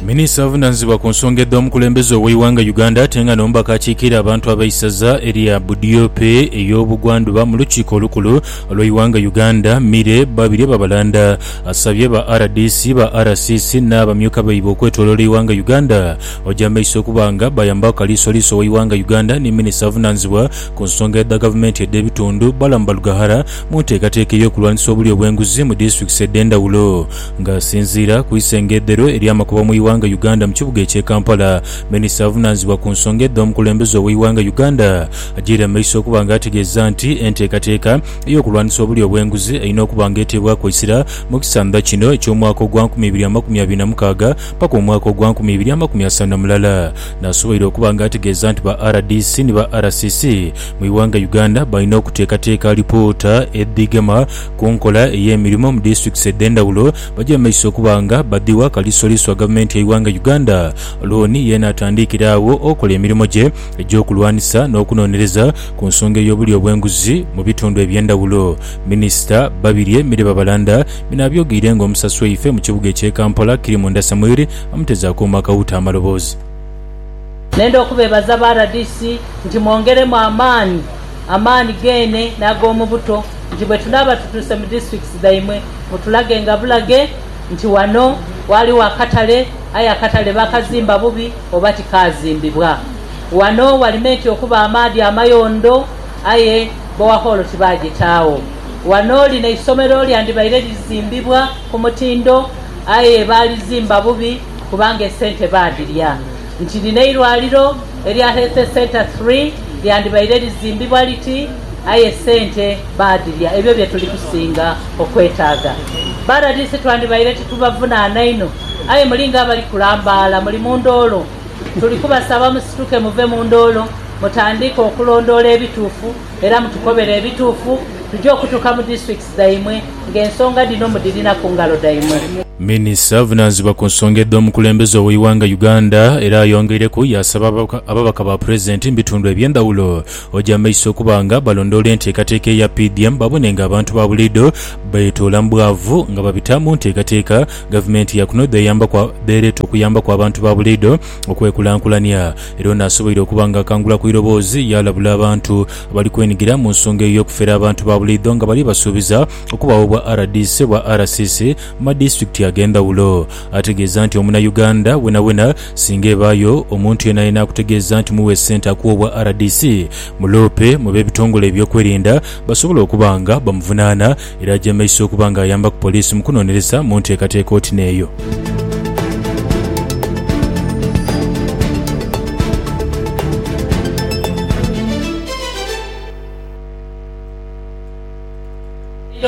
Minisita avunanizibwa ku nsonga edh'omukulembeze ow'eighanga Uganda ate nga n'omubaka akiikirira abantu ab'eisaza erya Budiope ey'obugwandhuba mu lukiiko olukulu olw'eighanga Uganda, Mire Babirye Babalanda asabye ba rdc, ba RCC n'abamyuka baibwe okwetoloola eighanga Uganda oja maiso okuba nga bayambaku Kaliisoliiso w'eighanga Uganda ni Minisita avunanizibwa ku nsonga edha gavumenti edh'ebitundu, Balaam Balugaghara mu nteekateeka ey'okulwanisa obulyo bw'enguzi mu disitulikiti edh'endhawulo. Nga asinziira ku isengedhero ery'amakubo mu ighanga Uganda mu kibuga ekye Kampala, Minisita avunanizibwa ku nsonga edho mukulembeze oweighanga Uganda agyeire mu maiso okuba nga ategeeza nti enteekateeka ey'okulwanisa obulyo obwenguzi erina okuba nga eteebwaku eisira mu kisandha kino eky'omwaka ogwa nkumi ibiri amakumi abiri na mukaaga paka omwaka ogwa nkumi ibiri amakumi asanu na mulala. Nasoboire okuba nga ategeeza nti ba rdc ni ba RCC mu ighanga Uganda balina okuteekateeka alipoota edhigema ku nkola ey'emirimo mu disitulikiti edh'endhawulo baje mu maiso okuba nga badhiwa kalisoliso gavumenti y'eighanga Uganda. Loan yeene atandiikire agho okola emirimo gye egy'okulwanisa n'okunonereza ku nsonga ey'obulyo obw'enguzi mu bitundu eby'endhawulo. Minisita Babirye Mire Babalanda bino abyogeire nga omusasi waife mu kibuga eky'e Kampala Kirimu Ndasamwiri amuteze akooma akawuuta amaloboozi. Nenda okubeebaza ba rdc nti mwongeremu amaani, amaani geene n'ag'omu buto nti bwe tunaaba tutuuse mu districts dhaimwe mutulagenga bulage nti wano waaliwo akatale aye akatale baakazimba bubi oba tikaazimbibwa. Wano wali meeti okuba amaadhi amayondo aye bowahoolo tibaagitaagho. Wano lino eisomero lyandibaire lizimbibwa ku mutindo aye baalizimba bubi. kubanga esente baadhilya. Nti lino eirwaliro erya Healthe Centre Three lyandibaire lizimbibwa liti aye esente baadhilya ebyo bye tuli kusinga okwetaaga. Ba rdc twandibaire titubavunaana inho aye muli ng'abali kulambaala muli mu ndoolo. Tuli kubasaba musituke muve mu ndoolo mutandiike okulondoola ebituufu era mutukobere ebituufu tuje okutuuka mu District dhaimwe, ng'ensonga dhino mudhirina ku ngalo dhaimwe. Minisita avunaanzibwa ku nsonga edh'omukulembeze ow'eighanga Uganda era ayongeireku yaasaba ababaka ba Pulezidenti mu bitundu eby'endhawulo oja amaiso okuba nga balondoola enteekateeka eya PDM babone nga abantu ba buliidho beetoola mu bwavu nga babita mu nteekateeka gavumenti ya kuno dh'ereeta okuyambaku abantu ba buliidho okwekulankulania era ono asoboire okuba nga akangula ku iroboozi yaalabula abantu Bali kwenigira mu nsonga eyo y'okufera abantu ba buliidho nga bali basuubiza okubagho obwa rdc, obwa RCC mu ma disitulikiti ag'endhawulo. Ategeeza nti omuna Uganda wenawena singa ebaayo omuntu yenayena akutegeeza nti mughe sente akuwe obwa rdc, muloope mu b'ebitongole eby'okwerinda basobole okuba nga bamuvunaana. Era ajemeisa okuba nga ayambaku poliisi mu kunonereza mu nteekateeka oti n'eyo.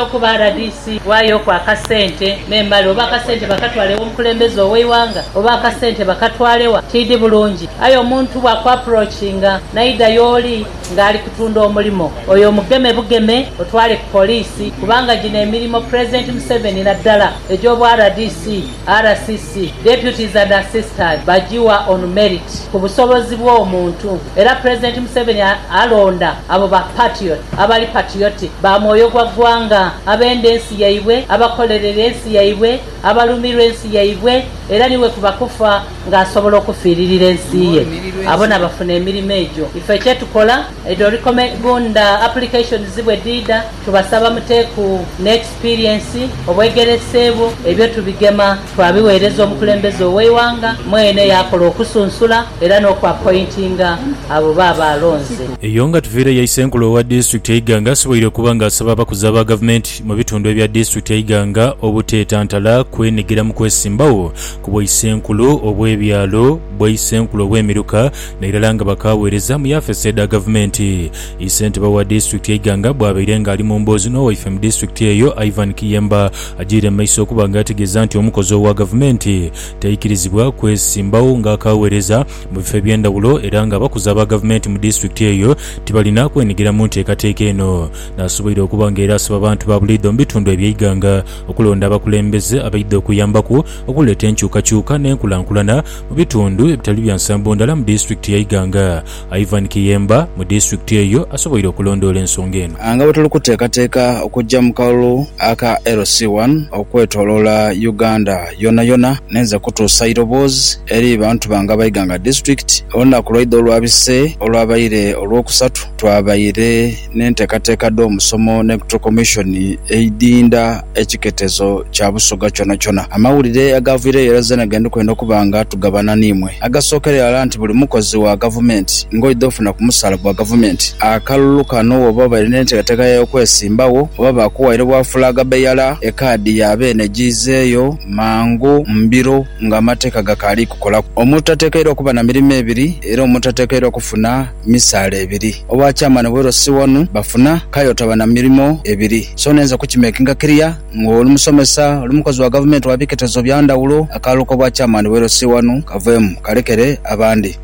okuba rdc waayo ku akasente n'emale oba akasente bakatwale ew'omukulembeze ow'eighanga oba akasente bakatwale wa, tiidhi bulungi. Aye omuntu bw'akuapproachinga n'aidha y'oli, nga ali kutunda omulimo oyo omugeme bugeme otwale ku poliisi kubanga gino emirimo Pulezidenti Museveni naddala egy'obwa rdc, RCC, Deputies and Assistant bagiwa on merit ku busobozi bw'omuntu era Pulezidenti Museveni alonda abo ba patriot abali patriotic ba mwoyo gwa ggwanga abenda ensi yaibwe abakolerera ensi yaibwe abalumirwa ensi yaibwe era ni bwe kuba kufa nga asobola okufiiririra ensi ye, abo nabafuna emirimo egyo. Ife kyetukola, edho recommend applications bwedhiidha, tubasaba mute ku ne experience, obwegerese bwo, ebyo tubigema twabiweereza omukulembeze oweighanga mwene yaakola okusunsula era n'oku appointinga abo baaba alonze. Eyo nga tuviireyo Isenkulu owa Disitulikiti e Iganga asoboire okuba nga asaba abakozi aba Gavumenti mu bitundu ebya Disitulikiti e Iganga obuteetantala kwenhigira mu kwesimbawo ku bwaisenkulu obw'ebyalo, bwaisenkulu obw'emiruka n'irala nga bakaaweereza mu yafesi edha gavumenti. I Ssentebe wa disitulikiti e Iganga bwabaire nga ali mu mboozi n'owaife mu disitulikiti eyo, Ivan Kiyemba agiire mu maiso okuba nga ategeeza nti omukozi owa gavumenti taikirizibwa kwesimbawo nga akaaweereza mu bifo eby'endhawulo era nga abakozi aba gavumenti mu disitulikiti eyo tibalina kwenhigira mu nteekateeka eno. Naasoboire okuba nga era asaba abantu ba buliidho mu bitundu eby'e Iganga Okulonda abakulembeze abaidha okuyambaku okuleeta enkyukakyuka n'enkulankulana mu bitundu ebitali bya nsambo ndala mu disitulikiti ya Iganga, Ivan Kiyemba mu disitulikiti eyo asoboire okulondoola ensonga eno. Nga bwe tuli kuteekateeka okujja mu kalulu aka LC One okwetoloola Uganda yonayona, ninze kutuusa eiroboozi eri bantu bange aba Iganga disitulikiti. Olunaku lwaidha olwabise olwabaire Olwokusatu twabaire. n'enteekateeka dh'omusomo n'Electoral Commission eidinda ekiketezo kya Busoga kyonakyona. Amawulire agaviireyo era zeena ge ndi kwenda okuba nga tugabana n'imwe. Agasookera irala nti buli mukozi wa Gavumenti ng'oidha ofuna ku musaala gwa Gavumenti akalulu kano bw'oba obaire n'enteekateeka y'okwesimbagho oba baakuwaire bwa fulaaga beyala ekaadi ya beene giizeeyo mangu mu biro ng'amateeka gakaali kukolaku. Omuntu tateekeirwa kuba na mirimo ebiri era omuntu tateekeirwa kufuna. misaala ebiri. Obwa chairman bwa LC wanu bafuna kale otaba na mirimo ebiri so nenze ku kimakinga clear nga oli musomesa, oli mukozi wa gavumenti wa biketezo bya ndhawulo, akalulu kobwa chairman bwa LC wanu kaveemu kalekere abandi.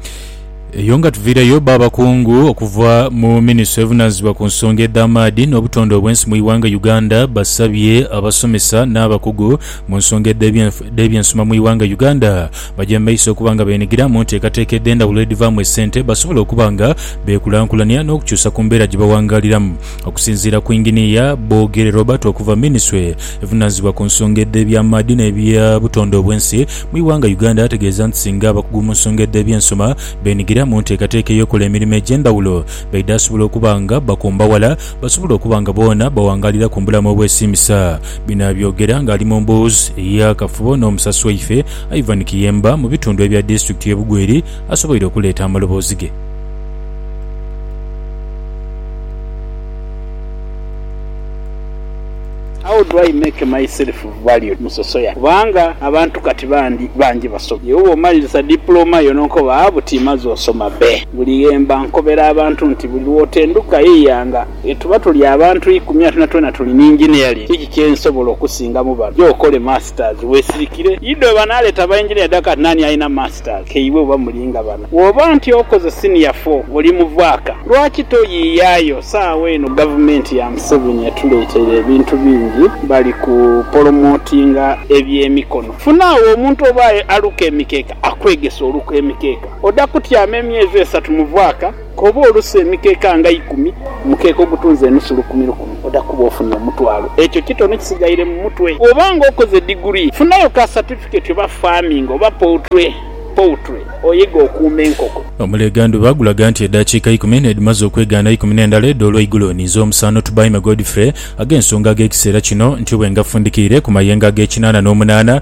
Eyo nga tuviireyo ba bakungu okuva mu ministry evunaanyizibwa ku nsonga edh'amaadhi n'obutonde obwensi mu ighanga Uganda basabye abasomesa n'abakugu mu nsonga edh'ebyensoma mu ighanga Uganda Baja mu maiso okuba nga beenhigira mu nteekateeka edh'endhawulo edhivaamu esente basobole okuba nga beekulankulania n'okukyusa ku mbeera gye bawangaaliramu. Okusinziira ku Inginiya Bogere Robert okuva minisitule evunaanyizibwa ku nsonga edh'eby'amaadhi n'ebya butonde obw'ensi mu ighanga Uganda ategeeza nti singa abakugu mu nsonga edh'ebyensoma beenhigira mu nteekateeka ey'okukola emirimo egy'endhawulo baidhasobola okuba nga bakomba wala basobole okuba nga boona bawangaalira ku mbulamu obwesiimisa. Bino abyogera ng'ali mu mbuuzi ey'akafubo n'omusasi waife Ivan Kiyemba mu bitundu ebya disitulikiti y'e Bugweri asoboire okuleeta amaloboozi ge. How do I make myself valued mu sosoya kubanga abantu kati bandi bangi basoma ye woba omaliriza dipulooma yo n'okoba buti maze osoma be buli ghemba nkobera abantu nti buli lwotenduka yeyanga Tuba tuli abantu ikumi ate na twena tuli ni engineering. Kiki kye nsobola okusinga mu bano? Gya okole masters weesirikire. Ido banaaleeta ba engineer dha kati naani alina masters ke iwe oba muli nga bana? Bw'oba nti okoze senior four oli muvaaka, lwaki toyiiyaayo? Saagho eno gavumenti ya Museveni etuleeteire ebintu bingi. Bali ku polomotinga eby'emikono. Funaagho omuntu oba aye aluka emikeeka akwegese oluka emikeeka. Oda kutyama emyezi esatu muvaaka. Koba olusu emikeeka nga ikumi, omukeeka ogutunze enusu lukumi lukumi, oja kuba ofunye omutwalo. Ekyo kitono kisigaire mu mutwe. Bw'oba nga okoze diguli, funayo ka satifikeeti oba farming oba poultry, poultry, oyege okuuma enkoko. Omulega ndhuba gulaga nti edhakiika ikumi n'edhimaze okwegaana eikumi n'endala edho olweigulo ninze omusaano Tubaime Godfrey ag'ensonga ag'ekiseera kino ntyobwe nga fundikiire ku mayengo ag'ekinaana n'omunaana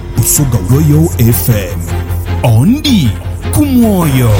Busoga Royal FM. Ondi ku mwoyo.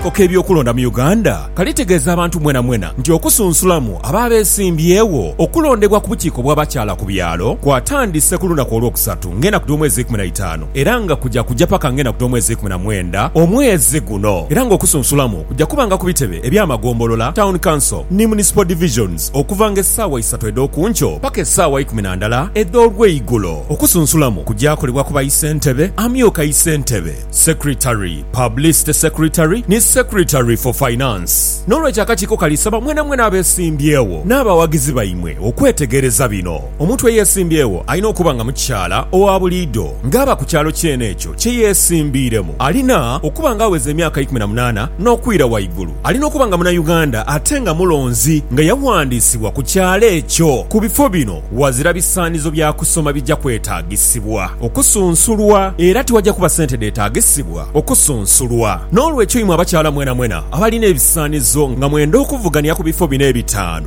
Akakiiko k'ebyokulonda mu Uganda kalitegeeza abantu mwenamwena nti okusunsulamu abo abeesimbyewo okulondebwa ku bukiiko bw'abakyala ku byalo kwatandise ku lunaku Olwokusatu ng'enaku dh'omwezi eikumi na itaanu. Era nga kuja kuja paka nga enaku dh'omwezi eikumi na mwenda omwezi guno. Era nga okusunsulamu kuja kuba nga ku bitebe eby'amagombolola, Town Council, ni Municipal Divisions, okuva nga esaawa isatu edh'okunkyo paka esaawa ikumi na ndala edh'olweigulo. Okusunsulamu kuja kolebwa ku ba Isentebe, Amyuka Isentebe, Secretary, Publicity Secretary, ni Secretary for Finance. N'olwekyo akakiiko kalisaba mwena mwena abesimbyewo n'abawagizi baimwe okwetegereza bino. Omuntu eyeesimbyewo alina okuba nga mukyala owa buliidho ng'aba ku kyalo kyene ekyo kye yeesimbiiremu. Alina okuba ng'aweza emyaka ikumi na munaana n'okwira waigulu. Alina okuba nga Munauganda ate nga mulonzi nga yaghandiisibwa ku kyalo ekyo. Ku bifo bino ghazira bisaanizo bya kusoma bigya kwetaagisibwa okusunsulwa era tiwagya kuba sente dheetaagisibwa okusunsulwa. N'olwekyo imwe abakyala mwenamwena abalina ebisaanizo nga mwenda okuvugania ku bifo bino ebitaanu,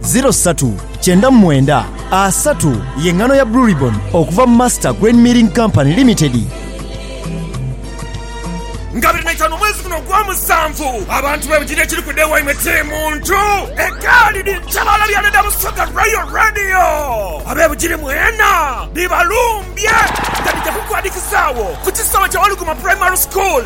Ziro satu kyenda mu mwenda asatu ye ngano ya Blue Ribbon okuva mu Master Grain Milling Company Limited. Nga biri na itaanu omwezi guno ogwa musanvu, abantu bebujidde ekiri kuda ewaimwe kiri muntu egaali ni ntabaala bya leda Busoga Royal Radio. Abebujiri mwena bibalumbye nga bidha kukwadikizaawo ku kisaawe kya Waluguma Primary School.